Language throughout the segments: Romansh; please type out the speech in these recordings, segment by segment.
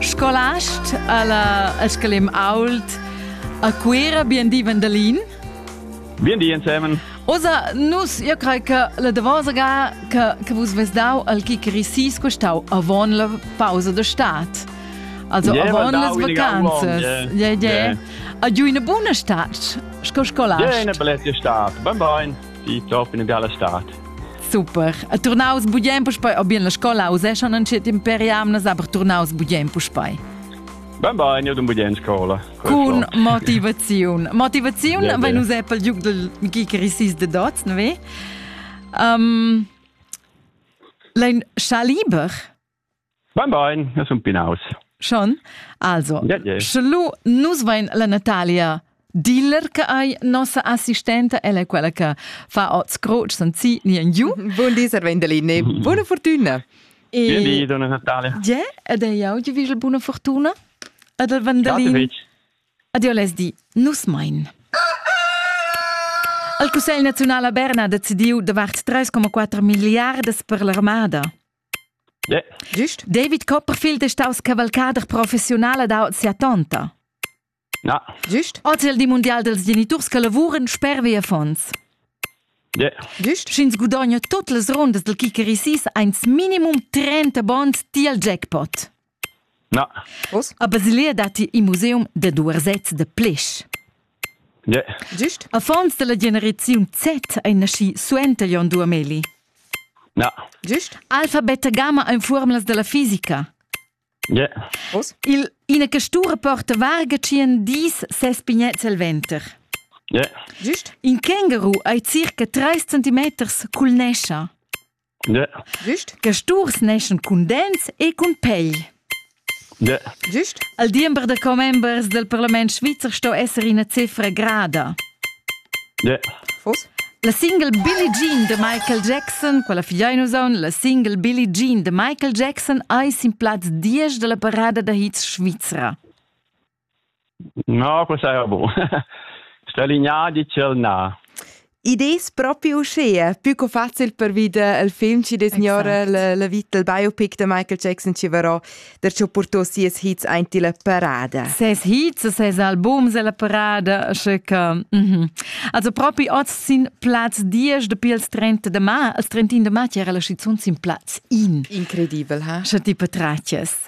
Scolast alla, al scolim ault a Cuera, bien di Vandalin. Bien di insemen. Osa, nus, io crei che la davosa ga che, che vus ves dau al Kikirisis costau avon la pausa de stat. Also yeah, avon las vacanzas. Yeah, yeah. yeah. A giu una buna stat, sco scolast. Yeah, una bellezia stat. Ben bein. Piuttosto in bella estate. Super. E turnaus bugen puspei, ob bien la scola useschan entschet imperi amnas, aber turnaus bugen puspei. Ben ben, io dun bugen scola. Cun motivaziun. Motivaziun, yeah, wenn us Apple giuc del Gicarissis de Dots, ne ve? Um, Lein Schaliber Bein, bein, eu sun pinaus. Schon? Also, yeah, yeah. sche lu nus vein la Natalia Diller che ei nossa assistenta, ella è quella che fa oz croce senzi nien giu. Buon di, Sir Vendelini. Buona fortuna. E... Buon di, donna Natalia. Yeah, ed è jau, ti vigel buona fortuna. Ed il Vendelin. Adio les di, nus mein. Il Cussegl nazionale a Berna ha decidiu davart 3,4 miliardas per l'armada. Gist? David Copperfield è staus cavalcader professiunal ad aut sia tonta. Na. Gist? Oz è il di mundial dels geniturs che lavuran sper via fonds. Yeah. Gist? Sch'ins gudogna tut las rundas del Kikerisis eins minimum 30 bonds tiel jackpot. Na. Uss? A Basilea datti in museum da duersets da plisch. Yeah. Gist? Affons dalla generaziun Z ein naschi suenter Jon Duhameli. Na. Gist? Alfa, beta, gamma ein formulas dalla fisica. Yeah. Uss? Il, ina castura porta varga tschien dis ses pignets el venter. Yeah. Gist? In känguru ei circa 3 centimeters cul nescha. Güst che sturs neschan cun dents e cun pegl. Güst al diember da commembers del parlament svizzer sto esser ina cifra grada. Fos? La single Billie Jean de Michael Jackson, quella figlia in usaun, la single Billie Jean de Michael Jackson ei sin plaz 10 della parada da hits svizra. No, quest saja bun. Sto alinea di ch'el na. Id es propi uschea, pü co facil per vida il film chi designora exact. la, la vita il biopic de Michael Jackson chi varò der cho portò sies hits aint illa parada. Ses hits, ses albums illa parada, sche che... Mhm. Also propi oz sin Platz 10 de pils 30 de ma, il 31 de ma c'era la canzun sin Platz 1. Incredibel, ha? Sche ti petraches.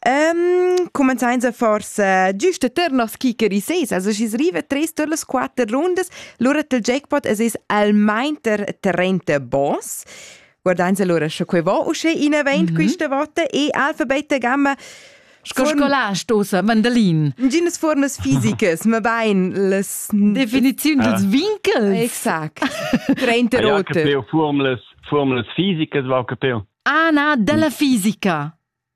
Um, cumenzains a forsa giusta ter nos kicker i seis, also schis riva tres tur las quatter rundas, lura tel jackpot es es almain ter 30 boss. Guardains allora sche quei va usce in event mm -hmm. questa volta e alfabeta gamma Sco scolà stosa mandalin. Ginas formas fisicas, ma bain las definiziun dels vincels. Exakt. 30 rote. Formlas formlas fisicas va che peu. Ah na, della fisica.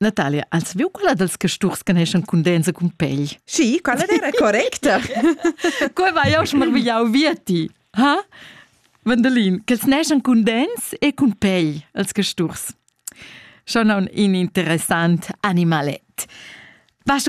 Natalia, ans viu quella dels casturs che neschan cun dents e cun pegl? Sì, quella era correcta. Coi vai jau smarvigliau via ti. Ha? Vendelin, quels neschan cun dents e cun pegl, els casturs. Schon un interessant animalet. Vas